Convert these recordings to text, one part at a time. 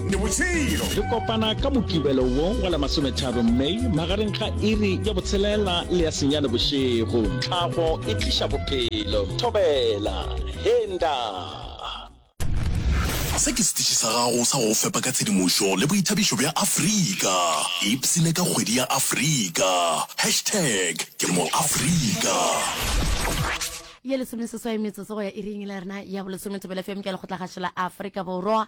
Ke botšhelo. Re kopana ka Mokibelo wo wa la masometharo May magareng ga iri ya botshelela le ya senyane bošego. Tlhago e tliša bophelo. Thobela. He, nta. Se ke setiši sa gago sa go go fepa ka tshedimošo le boithabišo bja Afrika. Ipsine ka kgwedi ya Afrika. Hashtag ke moAfrika. Ye lesomeseswai metsotso go ya iring e le ya rena ya bolesome, Thobela FM ke ya lekgotlakgašo la Afrika Borwa.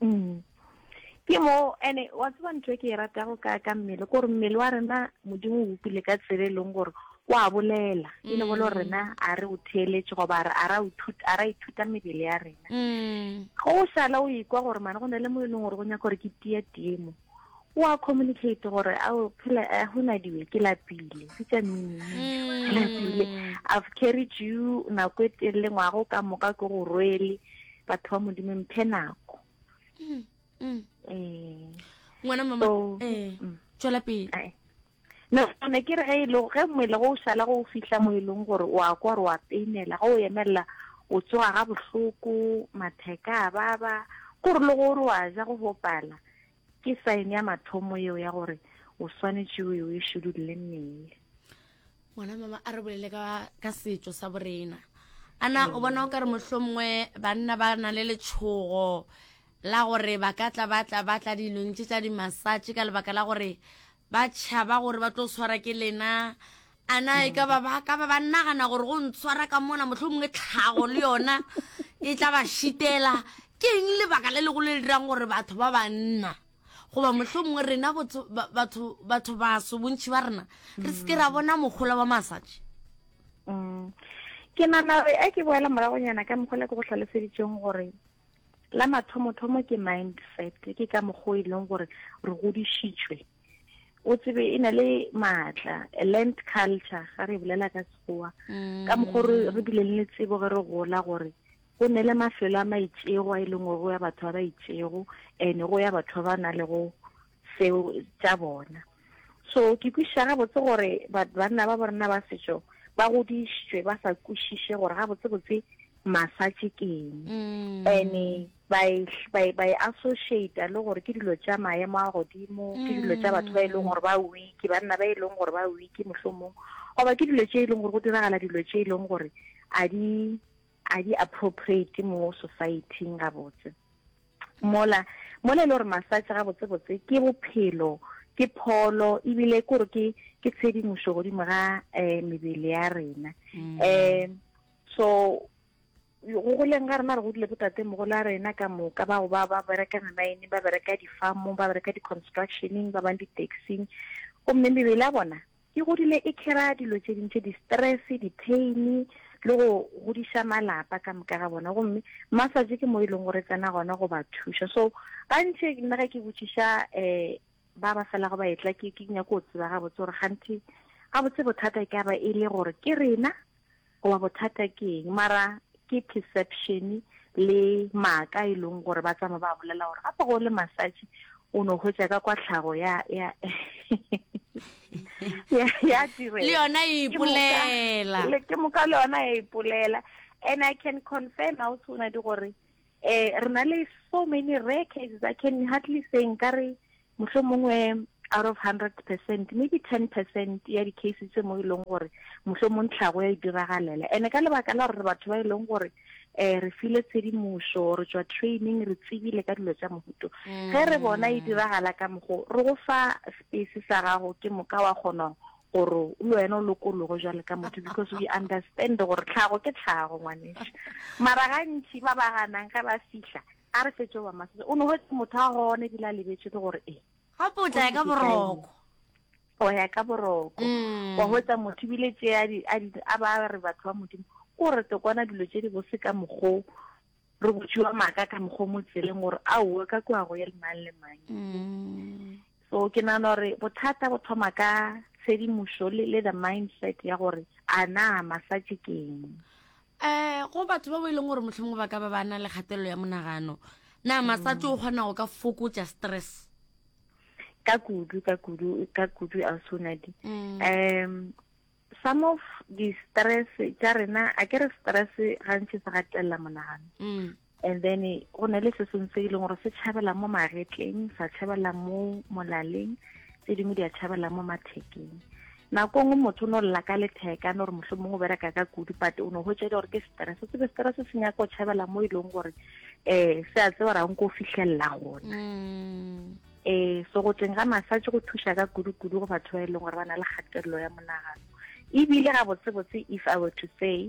mm. ke mo ene wa tseba ntho e ke e ratago ka ka mmele gore mmele wa rena modimo o bopile ka tsela e leng gore wa bolela e le bolo mm. rena a re o theeletse goba a ra ithuta mebele ya rena mm. go o sala o ikwa gore mane go na le mo e leng gore go nyaka gore ke tia tiemo o a communicate gore ao phela a eh, hona diwe ke lapile bitsa mmine mm. lapile i've carried you nako e telele ngwago ka moka ke go rwele batho ba modimo mphe nako mm, mm. Eh. ngwana mama eh, tswela pele Nagana ke re ge e le ge mmele go o šala go o fihla mo e leng gore o a kwa gore o a peinela ge o emelela o tsoga ga bohloko matheka a baba gore le gore o a ja go bopala ke sign ya mathomo eo ya gore o swanetše o e šedulele mmele ngwana mama a re bolele ka ka setso sa borena ana o bona o ka re motlho mongwe banna ba na le letshogo la gore ba ka tla ba tla ba tla dilong tse tsa dimasatše ka lebaka la gore Ba tšhaba gore ba tlo swara ke lena. A na e ka ba ba ka ba ba nagana gore go ntshwara ka mona mohlomongwe tlhago le yona e tla ba šitela? Ke eng lebaka le legolo le le dirang gore batho ba banna goba mohlomongwe rena botho- ba- batho batho baso bontšhi ba rena re se ke ra bona mogola wa massage? Mm. ke nana gore a ke boela moragonyana ka mogola ke go hlaloseditseng gore La mathomothomo ke mindset, ke ka mokgwa e leng gore re godišitšwe. O tsebe e na le maatla, a learned culture, ga re bolela ka sekgowa. Mm. Ka mokgwa re re bile le tsebo ge re gola gore go ne le mafelo a maitšego a e leng gore go ya batho ba ba itšego and go ya batho ba ba na le go seo tša bona so ke kwišiša gabotse gore banna ba borena ba setšo ba godišitšwe ba sa kwišiše gore gabotsebotse massage ke eng mm. ene ba e associata le gore ke dilo tša maemo a godimo ke mm. dilo tša batho ba e leng gore ba wiki banna ba e leng gore ba wiki mohlomong goba ke dilo tše e leng gore go diragala dilo tše e leng gore a di a di appropriate mo society-ing gabotse mola mola e le gore massage gabotsebotse ke bophelo ke pholo ebile ke gore ke ke tshedimošo godimo ga um mebele ya rena um so go goleng ga rena re godile botate mogolo a rena ka moka bao ba ba bereka memaene ba bereka di-farmong ba bereka di-constructioneng ba bang di-taxing gomme mebele ya bona Ke godile e khera dilo tše dintši, di-stress, di-pain, le go godiša malapa ka moka ga bona. Gomme massage ke mo e leng gore e tsena gona go ba thuša. So gantši nna ge ke botšiša um ba ba felago ba etla, ke nyako go tseba gabotse gore kganthe gabotse bothata e ka ba e le gore ke rena, Goba bothata ke eng? Mara ke perception le maaka e leng gore ba tsama ba bolela gore gape go le massage o no hwetša ka kwa tlhago ya ya ya ya direla le yona e ipolela le ke moka le yona e ipolela and i can confirm how soon di gore eh re na le so many rare cases i can hardly say nka re Mohlomongwe out of hundred percent, maybe ten percent ya di-case tse mo e leng gore mohlomong tlhago ya e diragalela. Ene ka lebaka la gore re batho ba e leng gore um re file tshedimošo re tswa training re tsebile ka dilo tša mohuto ge re bona e diragala ka mogo re go fa space sa gago ke moka wa kgona gore le wena o lokologo jwale ka motho because we understand gore tlhago ke tlhago ngwaneša mara gantši ba ba ganang ge ba fihla A re fetše wa masese o no hwetse motho a gone ebile a lebetše ke gore e. Gape o tla ya ka boroko. O ya ka boroko. Mm. Wa hwetsa motho ebile tše a di a di a ba re batho ba modimo ko re tokwana dilo tše di bose ka mokgo re botšiwa maaka ka mokgo mo tseleng gore a o ka kwa go ye le mang le mang. Mm. So ke nana gore bothata bo thoma ka tshedimošo le le the mindset ya gore a na massage keng. um go batho ba bo e leng gore motlhomongwe ba ka ba ba na le kgatelelo ya monagano na masato o kgona go ka fokotsa stress ka kudu ka kudu ka kudu a sonadi mm. um some of di-stress tša rena a ke re stress gantši se gatelela monagano mm. And then go na le se sengwe se e leng gore se tšhabela mo magetleng sa tšhabela mo molaleng tse dingwe di a tšhabela mo mathekeng nako nngwe motho o ne o lela ka letheka no gore motlho mongwe o bereka ka kudu pate o ne go tšele gore ke stress tsebe stress se nyaka o tšhabela mo e leng gore um se a tseba rang ko fitlhelela gona um so go teng ga massage go thuša ka kudu-kudu go batho ba e leng gore ba na le kgatelelo ya monagano ebile ga botsebotse if i were to say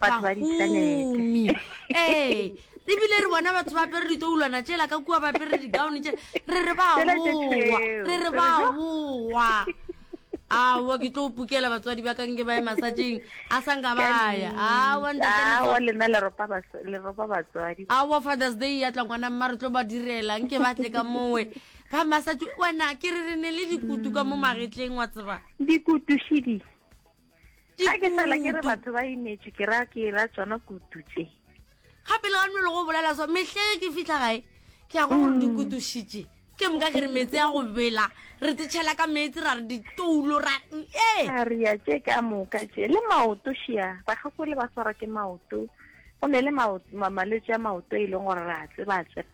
Batho ba bahumi ee ebile re bona batho ba apere ditoulwana tšela ka kua ba apere digaone tše re re ba Tsela tše bowa tšeo. re re ba bowa awa ke tlo pukela batswadi ba kanke ba ye masatšeng a sa nka baya awa ntate Leswa- awa lena le ropa bas- le ropa batswadi awa fathers day ya tla ngwana mma re tlo ba direla nke ba tle ka mowe ba masatši wena ke re re ne le dikutu ka mo magetleng wa tseba dikutušidi ga ke fela ke re batho ba imetše ke ra ke ra tsona kutu tše ga pele ga nolo go bolela so mehlege ke fitlha gae ke ya go gore di mm. kutušitše ke moka ke re metse ya go bela re tsetšhela ka metse ra re ditoulo ra ee a re ya tše ka moka tše le maoto šia bagakole ba tshwarwa ke maoto go ne le malwetse a maoto e leng gore re a tseba tseba